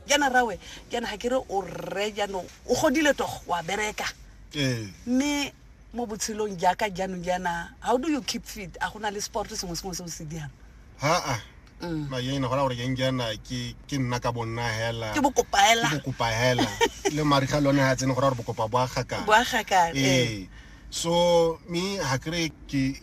jaana rawe jaana ga ke re o rre jaanong o godile togo wa bereka ee mme mo botshelong jaaka jaanong jaana how do you keep fit a go na le sport sengwe sengwe se o se dirang haa Mm. maena gona gore keng jaana ke ke nna ka bonna hela ke bokopaela ke bokopa hela le mariga le one ga tsene go ra gore bokopa bo a gakang boagakang ee so me ga kry ke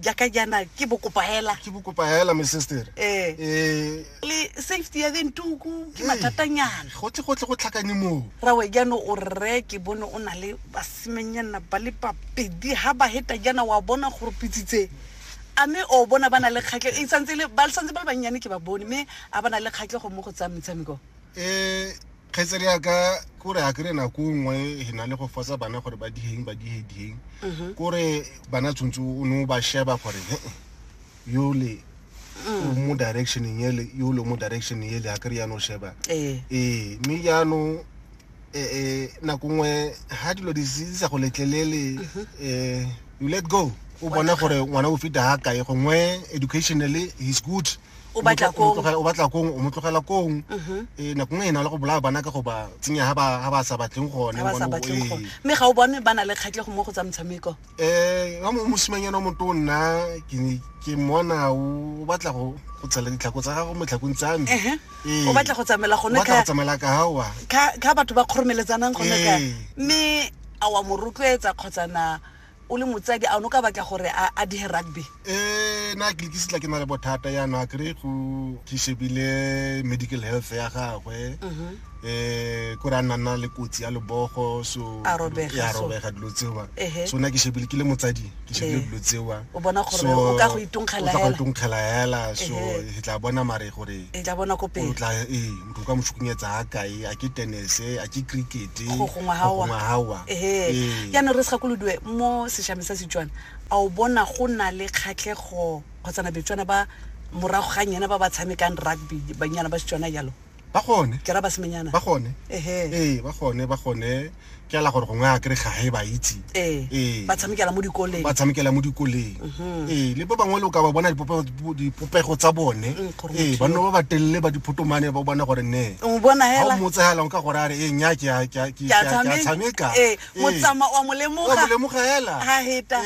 jaka jana ke bokopa hela ke bokopa hela my sister eh eh le safety ya then tuku ke matatanyana go tle go tle go tlhakane mo ra we jana o re ke bone o na le basimenyana ba le papedi ha ba heta jana wa bona gore pitsitse a me o bona ba na le kgatlhe e santse le ba santse ba le bannyane ke ba bone me a ba na le kgatlhe go mo go tsa metshameko eh kgetsere ya ka kore a kry nako nngwe e na le go fosa bana gore ba dieng ba die dieng mhm. kore bana tshwanetse o ne o ba sheba gore he yole mm. mo directioneng ele yole mo directioneng ele a kry yano sheba ee eh, mme jaanong eh, eh, nako nngwe ga dilo di sa go letlelele um mhm. you let go o bona gore ngwana o feta ga kae gongwe educationally he's good o batla kong o batla kong o mo tlogela kong mhm. eh nako nngwe ena le go bolaya bana ka go ba tsenya ha ba ha ba sa batleng gone ba sa batleng eh. gone mme ga o bone bana le kgatlego mo go tsa motshameko eh ga mo mosimanyana mo to nna ke ke mona o batla go go tsela ditlhako tsa gago mo tlhakong tsa me eh, eh. o batla go tsamela gone ka go tsamela ka hawa ka ka batho ba khoromeletsanang gone ka eh. mme a wa mo rotloetsa kgotsa na o le motsadi a o ne o ka batla gore a a dige rugby um na ke lekisitla ke na le bothata yaanong a kry go ke shebile medical health ya gagwe um kore a nna nna le kotsi ya lebogo so A robega, ya so. robega dilo tsewa Ehe. so na ke shebile ke le motsadi ke shebile Ee. dilo tsewa O bona gore So, o ka go itongkgela o tla go hela. itongkgela hela so Ehe. ke tla bona mare gore e tla bona ko o pele tla ee o ka mo šukunyetsa ga kae a ke tenese a ke crickete Go gongwe ga wa. gawa ehe jaanong re se gakolodiwe mo sešameng sa setswana a o bona go na le kgatlhego kgotsana betswana ba morago ga nyena ba ba tshamekang rugby banyana ba setswana jalo ba gone ke ra ba semenyana ba gone ehe ee ba gone ba gone ke ala gore gongwe a kry ga e ba itse ee, ee. ba tshamekela mo dikoleng ba tshamekela mo dikoleng mhm. ee le ba bangwe le o ka ba bona dipopego tsa bone mm, ee ba nno ba ba telele ba diphotomane ba bona gore ne o motsegelang ka gore a re ee nya ke tshameka ee, motsama wa molemoga hela ga heta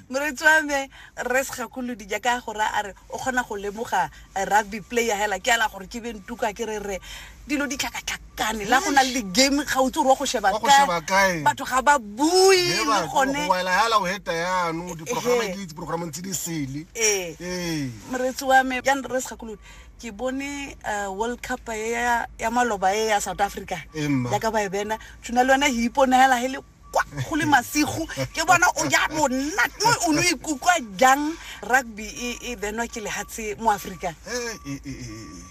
moretsi wa me re segakolodija ka gore a re o kgona go lemoga a rugby player hela ke ala gore ke be ntuka ke re re dilo di tlhakatlhakane la go na le di-game gautse gore wa go sheba Wa go sheba kae? batho ga ba bue He le ba- gone go waela hela o heta yano diporograma Ehe. ke itse porogrameng tse di sele ee ee moreetsi wa me ya nre se gakolodi ke bone eh, world cup e ya ya maloba e ya south africa Ee, mma. yaka ba e bena tshuna le yone he iponela he le kwa go le masigo ke bona o ja monna no o ne o ikutlwa jang rugby e e benwa ke lehatshe mo aforika Eh, eh, eh, eh, eh.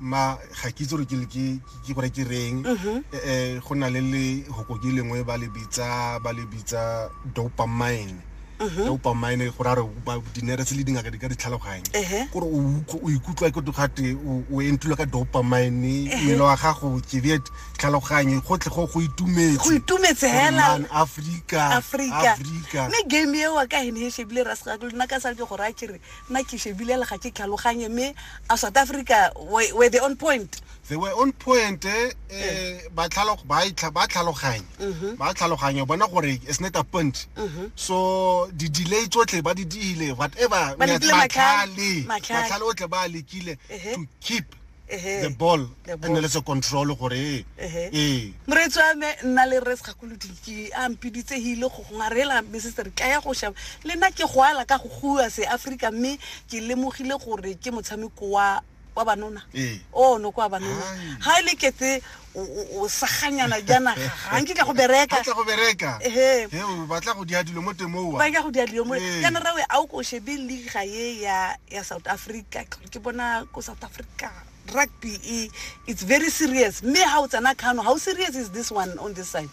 ma ga ke itse gore ke le- ke- ke- ke gore ke reng Mhm. Eh, eh, go na le le hokoki lengwe ba le bitsa ba le bitsa dopamine Mhm. dopamine go ra re ba dinere tse le dingaka di ka di tlhaloganya Ehe. gore o utlw- o ikutlwa ke togate o entlilwe ka dopamine mmele wa gago keviet tlhaloganye gotlhe go go itumetse go itumetse hela afrika afrika afrika me game eo ka hene he shebile ra sega go nna ka sa ke go ra kere nna ke shebile le ga ke tlhaloganye me a south africa were the on point they were on point eh, eh. ba tlhalo ba itla ba tlhaloganye mhm. ba tlhaloganye bona gore is not a point mhm. so di delay tsotlhe ba di dile whatever ba tlhale ba tlhale o tle ba lekile to keep the ball and le se control gore ee moreetsi wa me nna le res gakolodiki a mpiditse hile go gongwa re la mme setse re ka ya go shaba le nna ke go ala ka go gua se africa mme ke lemogile gore ke motshameko wa wa banona ee. o oh, no kwa banona ga e le ketse o saganyana janaga ga nke ka go bereka go bereka ehe ba tla go dia dilo mo temoa ba tla go dia dilo mo kana rawe a o ko shebe liga ye ya ya South Africa ke bona ko South Africa rugby e it's very serious me ha o tsana kano how serious is this one on this side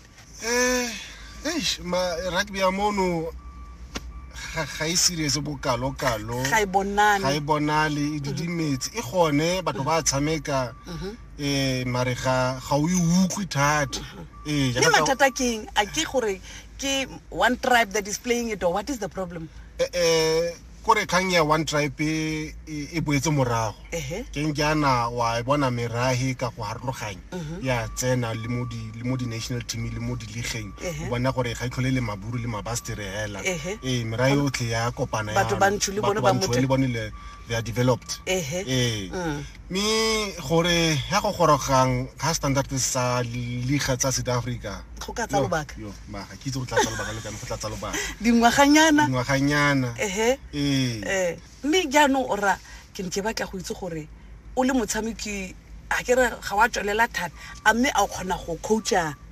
um eish ma rugby ya mono ga ga e serious bokalokalo ga e bonane ga e bonale e didimetse e gone batho ba tshameka um mare ga ga o e utlwe thata ee mme mathata keng a ke gore ke one tribe that is playing it or what is the problem um kore kgang ya one tribe e- e e boetse morago Ehe. ke nkjana wa e bona merahe ka go harologanya ya tsena le mo di- le mo di-national team le mo diligeng Ehe. o bona gore ga itlhole le maburu le mabastere hela Ehe. ee merahe yotlhe ya kopana Batho yana. bantsho le bone Batho ba bantsho motse. le bone le- they are developed Ehe. ee Mm. mme gore ya go gorogang ga standard sa liga tsa south africa go ka tsa lobaka maga ke itse go tlatsa lobaka le kana go tlatsa lobaka dingwaganyana dingwaganyana ehe ee. ee mme jaanong o ra ke ne ke batla go itse gore o le motshameki a ke re ga wa tswelela thata a mme a o kgona go coacha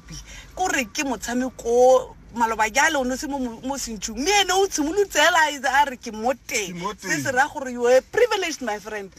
rugby ko re ke motshameko maloba jale o ne se mo sentšhung mme ene o tshimolotse ela e a re ke mo teng se se raya gore you are privileged my friend